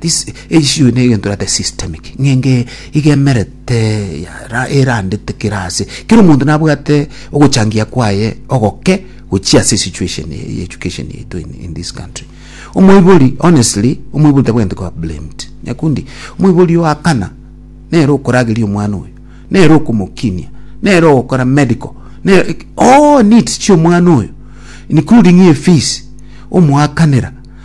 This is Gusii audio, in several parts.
This issue ne egento erate systemic ng'enge iga emerete yara erandete kera ase kera omonto nabwate ogochangia kwaye ogoke gochia ase situation eye ya education yaito in, in this country omoibori honestly omoibori tabwenerete koba blamed nyakundi omoibori oakana nere okorageria omwana oyo nere okomokinia nere ogokora medical nere all needs chia omwana oyo including efees omoakanera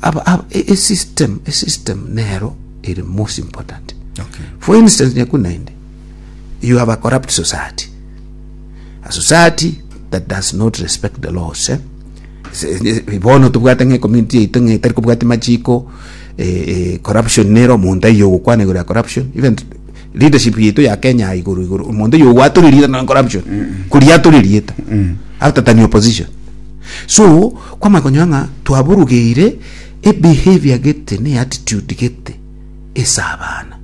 Aba, aba, e- esystem esystem nero ere most important Okay. for instance nyaku naende you have a corrupt society a society that does not respect the laws eh? Se- se- bono tobwate ng'a community yaito ng'a etari kobwati machiko eh, eh, corruption nero omonto aiyo ogokwana igoro ya corruption even t- leadership yaito ya Kenya ya igoro igoro omonto oyo owatorerieta nonya corruption koria atorerieta after than opposition so kwamanya konyora ng'a twaburugeire ebehaviour gete ne attitude gete ase abana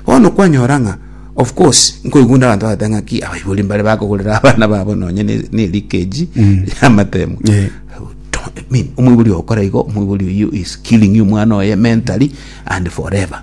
bono kwanyora ng'a of course nkoigwa onde abanto bagoteba ng'aki abaibori mbare bakogorera abana babo nonya ne ne elikeji yamatemu Yeah. Don't- I mean, omoibori ogokora igo omoibori oyio is killing you omwana oye mentally and forever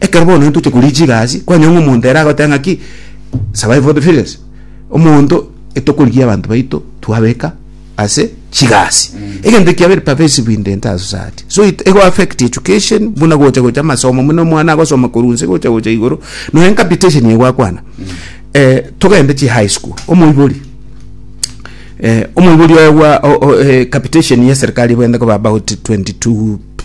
Ekero bono ntoche koria chigasi, kwanyora ng'a omonto ere agoteba ng'aki, survive for the fittest. Omonto etokorigia abanto baito twabeka ase chigasi. Egento ekiya very pervasive in the entire society. So it ego affect education, buna gocha gocha amasomo buna omwana agosoma korwa inse gocha gocha igoro, nonya capitation eye gwakwana. Eh, togende chi high school, omoibori, eh, omoibori oye gwa o- o eh, capitation ya eserikari ebwenerete koba about 22 p-